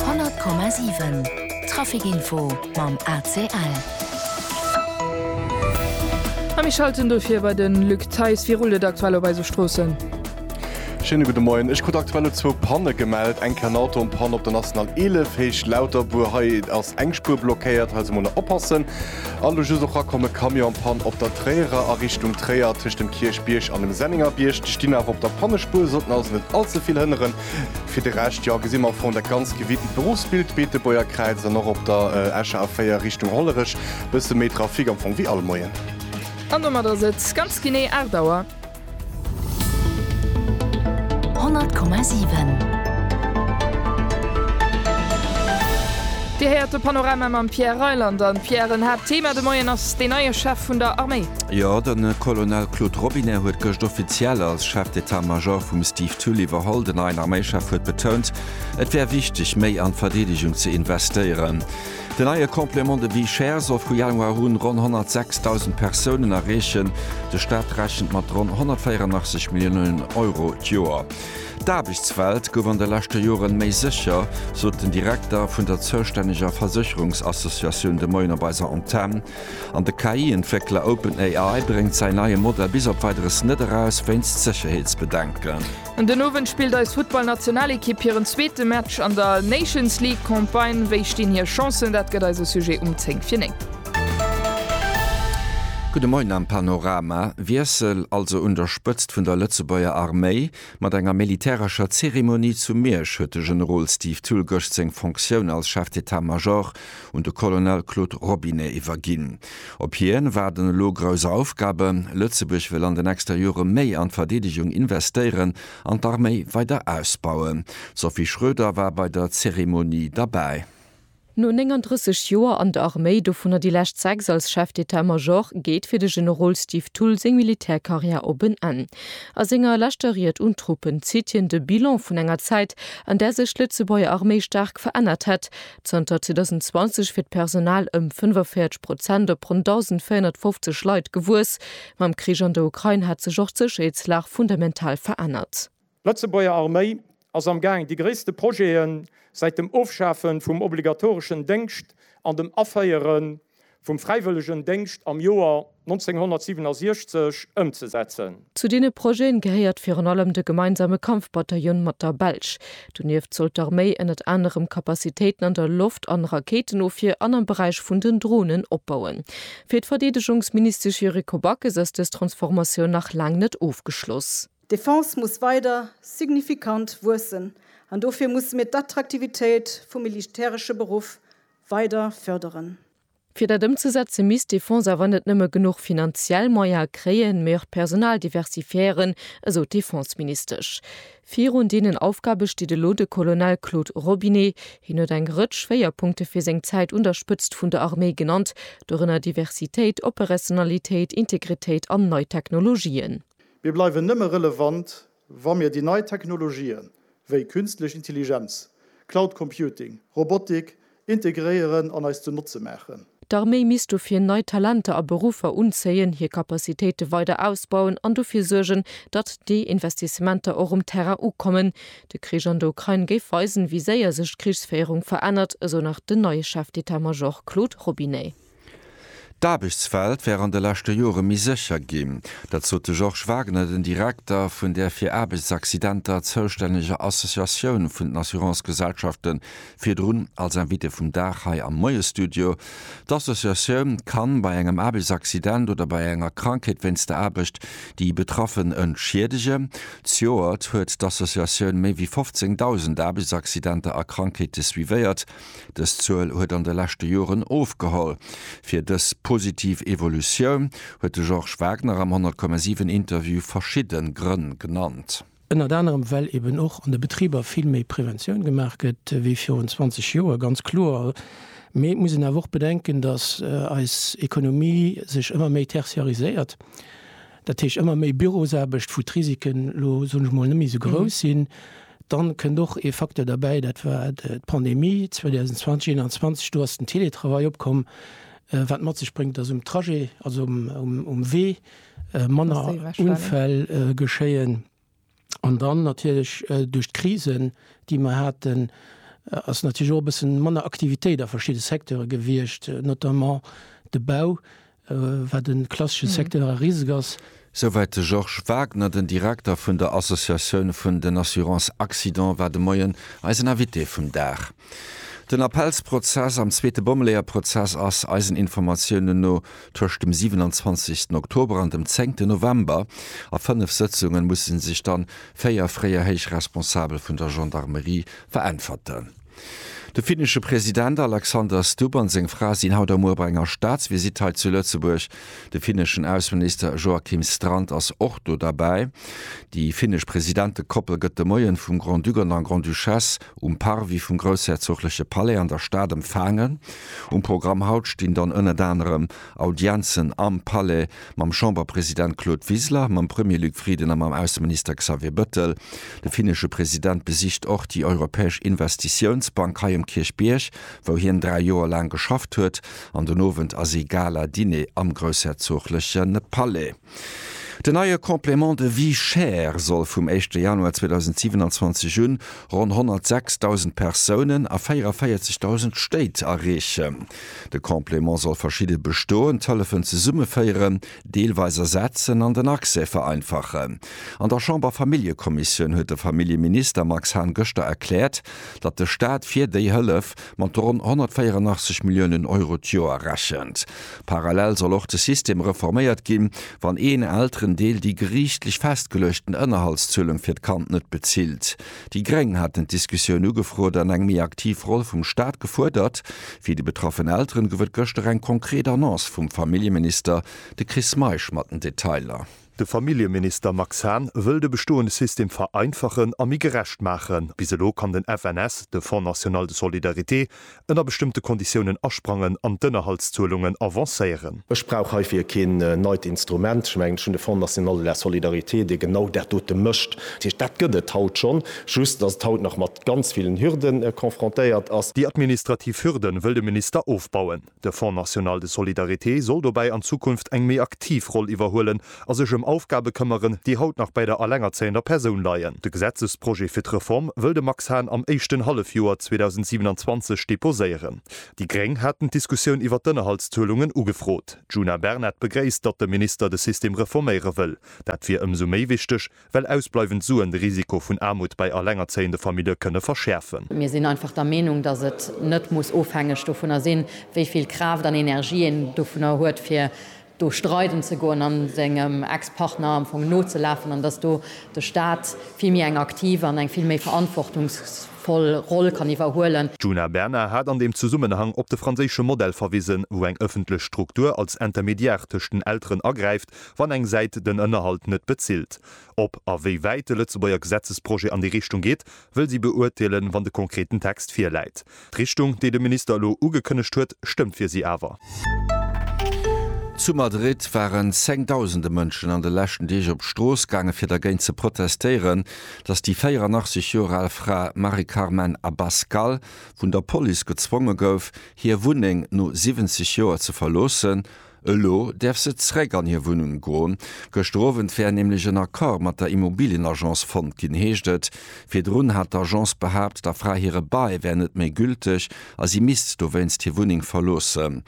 100,7 Traficinfo mam ACL. A mir schalten dofir bei de Luc Theis. Wéi rullt et aktuell op eise Stroossen? Schéine gudde Moien. Ech krut aktuell elo zwou Panne gemellt. Eng Ken Auto Panne op der National 11 Héicht Lauterbuer. Hei ass eng Spuer blockéiert, hei also mol nach oppassen. A elo just och rakomm e Camion an Pann op der Tréierer a Richtung Tréier tëscht dem Kierchbierg an dem Sennéngerbierg. Déi stinn awer op der Pannespuer, sollten also net allze vill hënneren. Fir de Rescht, jo, gesi mer au fond dat ganz gewiddent Beruffsbild Beetebuerger Kräiz an och op der Escher A4 Richtung Hollerech e bësse méi Trafic, am Fong wéi all Moien. An domat ass et ganz genee 8 Auer. 100,7. Dir héiert de Panorama mam Pierre Reyland. An, Pierre, en Haaptthema de Moien ass deen neie Chef vun der Arméi. Jo, de Colonel Claude Robinet huet gëscht offiziell als Chef d'état-major vum Steve D'Tully Verhol, den neien Arméichef, huet betount, et wär wichteg, méi an d'Verdeedegung ze investéieren. Den neie Complément de vie chère soll vu Januar un ronn 106.000 Persounen erreechen. De Staat rechent mat ronn 184 Milliounen Euro d'Joer. D'Aarbechtswelt gouf an de leschte Joren méi sécher, sot den Direkter vun der zoustänneger Versécherungsassociatioun de Moien op eiser Antenn. An de KI-Entwéckler OpenAI bréngt säin neie Modell bis op Weideres net eraus, wéinst Sécherheetsbedenken. An den Owend spillt eis Futtballnationalekipp hiren zweete Match an der Nations League Campagne. Wéi stinn hir Chancen? Dat gëtt eise Sujet um 10 fir 9. Gudde Moien am Panorama. Wiessel also un der Spëtzt vun der Lëtzebuerger Arméi. Mat enger militärescher Zeremonie zu Miersch huet de Generol Steve Thull gëscht seng Fonctioun als Chef d'État-Major un de Colonel Claude Robinet iwwerginn. Op hien waarden elo grouss Aufgaben. Lëtzebuerg wëll an den nächster Jore méi an d'Verdeedegung investéieren an d'Arméi weider ausbauen. D'Sophie Schröder war bei der Zeremonie derbäi. No 39 Joer an der Arméi, dovunner déi lescht sechs als Chef d'État Major, geet fir de Generol Steve Thull seng Militärkarriär op en Enn. A senger leschter Ried un d'Truppen zitt hien de Bilan vun enger Zäit, an där sech d'Lëtzebuerger Arméi staark verännert hätt, Zanter 2020 wier d'Personal ëm 45 Prozent op ronn 1.450 Leit gewuess. Mam Krich an der Ukrain hat sech och d'Sécherheetslag fundamental verännert. D'Lëtzebuerger Arméi ass am Gaang déi gréisste Projete säit dem Ofschafe vum obligatoreschen Déngscht an dem Aféiere vum fräiwëllegen Déngscht am Joer 1967 ëmzesetzen. Zu deene Projeten gehéiert virun allem de gemeinsame Kampfbataillon mat der Belsch. Donieft soll d'Arméi ënnert anerem Kapazitéiten an der Loft an Rakéitenofwier an am Beräich vun den Dronen opbauen. Fir d'Verdeedegungsministesch Yuriko Backes ass dës Transformatioun nach laang net ofgeschloss. D'Defense muss weider signifikant wuessen an dofir musse mir d'Attraktivitéit vum militäresche Beruff weider förderen. Fir dat ëmzesetze misst de Fonds awer net nëmme genuch finanziell Moyene kréien, mee och d'Personal diversifiéieren, esou d'Defenseministesch. Virun deenen Aufgabe steet elo de Colonel Claude Robinet. Hien huet eng Rëtsch Schwéierpunkte fir seng Zäit un der Spëtzt vun der Arméi genannt, dorënner Diversitéit, Operationalitéit, Integritéit an nei Technologien. Mir bleiwen nëmme relevant, Wa mir déi nei Technologien, wéi Künstlech Intelligenz, Cloud Computing, Robotik, integréieren an eis zu Notze maachen, D'Arméi misst dofir nei Talenter a Beruffer unzéien, hir Capacitéite weider ausbauen an dofir suergen, datt déi Investissementer och um Terrain ukommen. De Krich an der Ukrain géif weisen, wéi séier sech d'Krichsféierung verännert, esou nach den neie Chef d'État-Major Claude Robinet. D'Aarbechtswelt wär an de leschte Jore méi sécher ginn. Dat sot de Georges Wagner, den Direkter vun där fir Aarbechtsaccidenter zoustänneger Associatioun vun den Assurance-Gesellschafte virdrun als Invité vum Dag hei am Moie-Studio. D'Associatioun kann bei engem Aarbechtsaccident oder bei enger Krankheet wéinst der Aarbecht déi Betraffen entschiedegen. Zejoert huet d'Associatioun méi wéi 15.000 Aarbechtsaccidenter a Krankheete suivéiert. Dës Zuel huet an de leschte Joren ofgeholl. Fir dës positiv Evolutioun huet de Georges Wagner am 10,7 Interview verschidde Grënn genannt. Ënnert anerem well eben och an de Betriber vill méi Preventioun gemaach gëtt wéi virun 20 Joer, ganz kloer. Mee et muss een awer och bedenken, datt eis Ekonomie sech ëmmer méi tertiariséiert. dat heescht ëmmer méi Bürosaarbecht, wou d'Risiken elo, soen ech mol, net méi esou grouss sinn, dann kënnt och ee Facteur derbäi, dat war d'Pandemie 2020, 2021, do ass den Télétravail opkomm, wat mat sech bréngt, dass um Trajet, also um Wee manner Unfäll geschéien. An dann natierlech duerch d'Krisen, déi mer haten, ass natierlech och e bësse manner Aktivitéit a verschidde Secteure gewiescht, notamment de Bau, wat e klassesche Secteur a risque ass. Souwäit de Georges Wagner, den Direkter vun der Associatioun vun den Assurance-Accident war de Moien eisen Invité vum Dag. Den Appellsprozess am zweete Bommeleeërprozess ass, eisen Informatiounen no, tëscht dem 27 Oktober an dem 10 November. A fënnef Sëtzunge musse sech dann véier fréier héich Responsabel vun der Gendarmerie veräntwerten. De finnesche President Alexander Stubb an seng Fra sinn haut a muer bei enger Staatsvisitt hei zu Lëtzebuerg. De finneschen Ausseminister Joakim Strand ass och do derbäi. Déi finnesch Presidentekoppel gëtt de Moien vum Grand-Duc an der Grande-Duchesse um Parvis vum groussherzogleche Palais an der Stad empfaangen. Um Programm haut stinn dann ënnert anerem Audienzen am Palais mam Chamberpresident Claude Wiseler, mam Premier Luc Frieden a mam Ausseminister Xavier Bëttel. De finnesche President besicht och déi Europäesch Investitiounsbank hei um Kierchbierg, wou hien dräi Joer laang geschafft huet an den Owend ass ee Gala-Diner am groussherzogleche Palais. Den neie Complément de vie chère soll vum éischte Januar 2027 un ronn 106.000 Persounen a 44.000 Stéit erreechen. De Complément soll verschidde bestoend Hëllefen zesummeféieren, deelweis ersetzen an den Accès vereinfachen. An der Chamber-Familljekommissioun huet de Familljeminister Max Hahn gëschter erkläert, datt de Staat fir déi Hëllef, mat ronn 184 Milliounen Euro d'Joer rechent. Parallel soll och de System reforméiert ginn, wann een Elterendeel déi geriichtlech festgeluechten Ënnerhaltszuelung fir d'Kand net bezilt. Déi Gréng haten d'Diskussioun ugefrot an eng méi aktiv Roll vum Staat gefuerdert. Fir déi betraffen Elteren gouf et gëschter eng konkret Annonce vum Familljeminister, de Chris Meisch mat den Detailer. De Familljeminister Max Hahn wëll de bestoende System vereinfachen a méi gerecht maachen. Bis elo kann den FNS, de Fonds national de solidarité, ënner bestëmmte Konditiounen asprangen an d'Ënnerhaltszuelungen avancéieren. Ech brauch heifir keen neit Instrument. Ech mengen, ech hunn de Fonds national de la solidarité, dee genau dat dote mécht. Dat heescht, dat gëtt et haut schonn, just datt et haut nach mat ganz villen Hürde confrontéiert ass. Déi administrativ Hürde wëll de Minister ofbauen. De Fonds national de solidarité soll dobäi an Zukunft eng méi aktiv Roll iwwerhuelen a sech ëm Aufgabe këmmeren, déi haut nach bäi der elengerzéiender Persoun leien. De Gesetzesprojet fir d'Reform wëll de Max Hahn am éischten Hallefjoer 2027 deposéieren. Déi gréng haten d'Diskussioun iwwert d'Ënnerhaltszuelungen ugefrot. D'Djuna Bernard begréisst, datt de Minister de System reforméiere wëll. Dat wier ëmsou méi wichteg, Well ausbleiwend Suen de Risiko vun Aarmut bei allengerzéiende Famillje kënne verschäerfen. Mir sinn einfach der Meenung, dass et net muss ofhängeg dovunner sinn, wéi vill Kraaft an Energie een dovunner huet, fir do streiden ze goen a sengem Ex-Partner am Fong nozelafen, an dass do de Stat vill méi eng aktiv an eng vill méi verantwortungsvoll Roll kann iwwerhuele. D'Djuna Bernard hat an deem Zesummenhang op de franséische Modell verwisen, wou eng ëffentlech Struktur als Intermédiaire tëscht den Elteren agräift, wann eng Säit den Ënnerhalt net bezilt. Ob a wéi wäit de Lëtzebuerger Gesetzesprojet an déi Richtung geet, wëll si beurteelen, wann de konkreten Text virläit. D'Richtung, déi de Minister elo ugekënnegt huet, stëmmt fir si awer. Zu Madrid waren zengdausende Mënschen an de leschten Deeg op d'Strooss gaange fir dergéint ze protestéieren, datt déi 84 Joer al Fra Mari Carmen Abascal vun der Police gezwonge gouf, hir Wunneng no 70 Joer ze verloossen, Elo däerf se zréck an hir Wunnung goen. Gëschter Owend wär nämlech en Accord mat der Immobilienagence fonnt ginn, heescht et. Virdrun hat d'Agence behaapt, der Fra hire Bail wär net méi gülteg a si misst dowéinst hir Wunneng verloossen.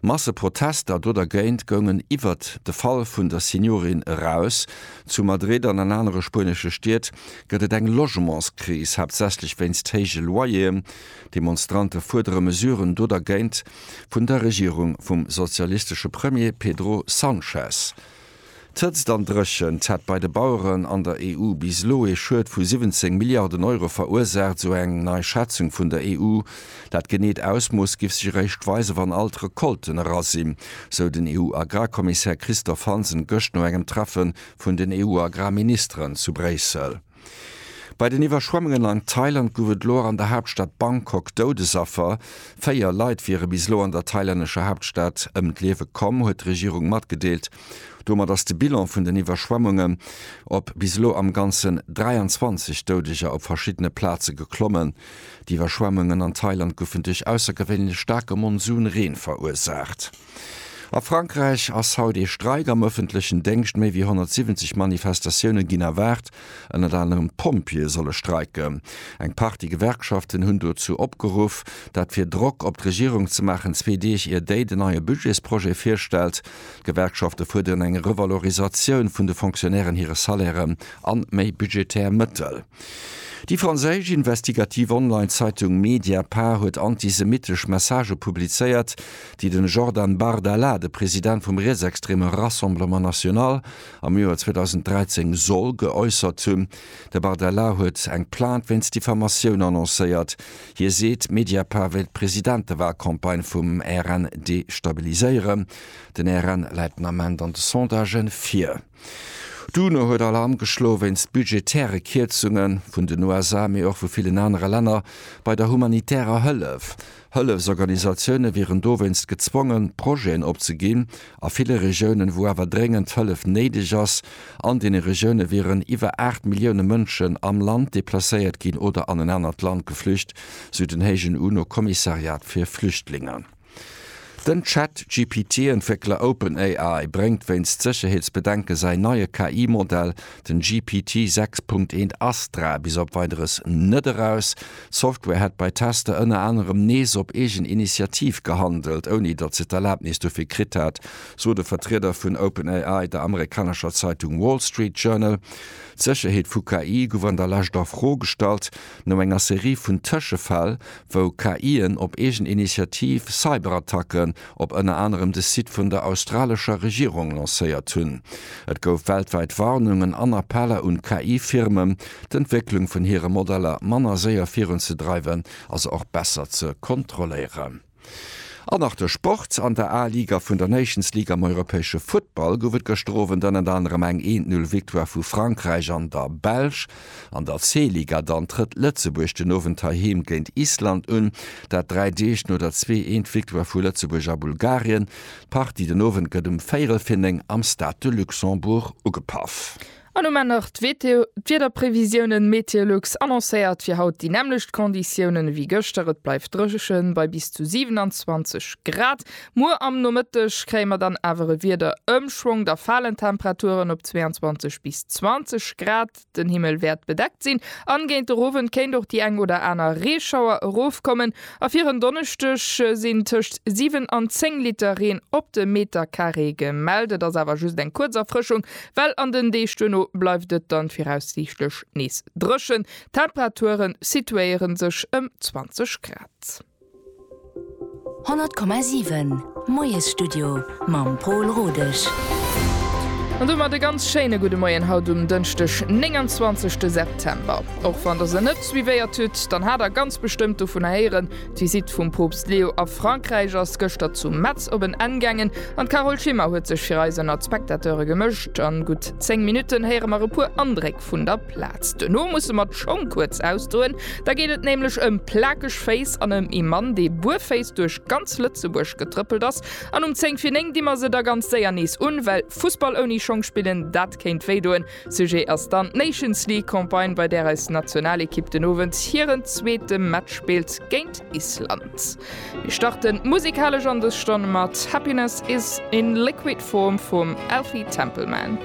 Masseprotester do dergéint goungen iwwert de Fall vun der Seniorin eraus. Zu Madrid an an anere spuenesche Stied gëtt et eng Logementskris, haaptsächlech wéinst héije Loyeren. D'Demonstrante fuerdere Mesuren do dergéint. vun der Regierung vum sozialistesche Premier Pedro Sanchez. D'Hëtzt an d'Dréchent hätt bei de Baueren an der EU bis elo ee Schued vu 17 Milliarden Euro verursaacht, sou eng nei Schätzung vun der EU. Dat geneet Ausmooss giff sech eréischt weisen, wann all d'Recolten era sinn, sou den EU-Agrarkommissär Christophe Hansen gëscht no engem Treffe vun den EU-Agrarministeren zu Bréissel. Bei den Iwwerschwemmungen an Thailand gouf et elo och an der Haaptstad Bangkok Doudesaffer. Véier Leit wiere bis elo an der thailännescher Haaptstad ëm d'Liewe komm, huet d'Regierung matgedeelt. Domat ass de Bilan vun den Iwwerschwemmungen op bis elo am Ganzen 23 Doudeger op verschiddene Plaze geklommen. D'Iwwerschwemmungen an Thailand goufen duerch aussergewéinlech staarke Monsunreen verursaacht. A Frankräich ass haut ee Streik am ëffentlechen Déngscht. Méi wéi 170 Manifestatioune ginn erwaart. Ënnert anerem Pompjeeë solle streiken. Eng Partie Gewerkschaften hunn dozou opgeruff, dat fir Drock op d'Regierung ze maachen, zwee Deeg ier déi den neie Budgetsprojet virstellt. D'Gewerkschafte fuerderen eng Revalorisatioun vun de Fonctionnairen hire Salairen an méi budgetär Mëttel. Déi franséisch investigativ Online-Zeitung Mediapart huet antisemittesch Messagë publizéiert, déi de Jordan Bardella, de President vum rietsextreme Rassemblement National, am Joer 2013 soll geäussert hunn. De Bardella huet eng Plainte wéinst Diffamatioun annoncéiert. Hie seet, Mediapart wéilt d'Presidentewalcampagne vum RN destabiliséieren. Den RN läit den Ament an de Sondagen vir. D'UNO huet Alarm geschloe wéinst budgetäre Kierzunge vun den USA, mee och vu villen anere Länner bei der humanitärer Hëllef. Hëllefsorganisatioune wieren dowéinst gezwongen, Projeten opzeginn a ville Regiounen, wou awer dréngend Hëllef néideg ass. An deene Regioune wieren iwwer 8 Millioune Mënschen am Land deplacéiert ginn oder an en anert Land geflücht, sou den héijen UNO-Kommissariat fir Flüchtlingen. Den Chat-GPT-Entwéckler OpenAI bréngt wéinst Sécherheetsbedenke säin neie KI-Modell, den GPT 6.1 Astra, bis op Weideres net eraus. D'Software hätt bei Tester ënner anerem nees op eegen Initiativ gehandelt, ouni datt se d'Erlabnis dofir kritt hätt, sot e Vertrieder vun OpenAI der amerikanescher Zeitung Wall Street Journal. D'Sécherheet vu KI gouf an der Lescht a Fro gestallt, no enger Serie vun Tëschefäll, wou KIen op eegen Initiativ Cyberattacken op ënner anerem de Site vun der australescher Regierung lancéiert hunn. Et gouf weltwäit Warnungen an Appeller un KI-Firmen, d'Entwécklung vun hire Modeller manner séier virunzedreiwen a se och besser ze kontrolléieren. An nach de Sport, An der A-Liga vun der Nations League am europäesche Futtball gouf et gëschter Owend ënnert anerem eng Eent-Null-Victoire vu Frankräich an der Belsch. An der C-Liga dann trëtt Lëtzebuerg den Owend heiheem géint Island un, dat dräi Deeg no der Zwee-Eent-Victoire vu Lëtzebuerg a Bulgarien. D'Partie den Owend gëtt um véierel fir néng am Stade de Luxembourg ugepaff. An um Enn nach d'Wiederprevisiounen, Meteolux annoncéiert fir haut déi nämmlecht Konditiounen ewéi gëschter, et bleift drëchen bei bis zu 27 Grad Muer am Nomëtteg kréie mer dann awer e Wiederëmschwong, da falen d'Temperaturen op 22 bis 20 Grad, den Himmel wäert bedeckt sinn an géint den Owend kéint och déi eng oder aner Reeschauer erofkommen a fir en Donneschdeg sinn tëscht 7 an 10 Liter Reen op de Metercarré gemellt. Et ass awer just eng kuerz Erfrëschung, well an den Deeg duerno bleift et dann viraussiichtlech nees drëchen, d'Temperaturen situéieren sech ëm 20 Grad. 100,7 Moiesstudio mam Pol Rodesch. An domat e ganz schéine gudde Moien haut um Dënschdeg 29 September. Och wann der se net suivéiert hutt, dann hat der ganz bestëmmt dovunner héieren. D'Visitt vum Poopst Leo a Frankräich ass gëschter zu Metz op en Enn gaangen an d'Carole Schimmer huet sech fir eis ënnert d'Spectateure gemëscht. An gutt 10 Minutten héiere mer e puer Andréck Rest vun der Plaz. Duerno musse mer d'Schong kuerz ausdoen, da geet et nämlech ëm plakeg Féiss an ëm ee Mann, dee buerféiss duerch ganz Lëtzebuerg getrëppelt ass. An um 10 vir 9 di mer se da ganz séier nees un, well Fussball ouni Schong spillen, dat kéint wéi doen. Sujet ass dann d'Nations League Campagne, bei där eis Nationalekipp den Owend hiren zweete Match spillt géint Island. Mir starten musikalesch an dës Stonn mat Happiness Is In Liquid Form vum Elfie Templeman.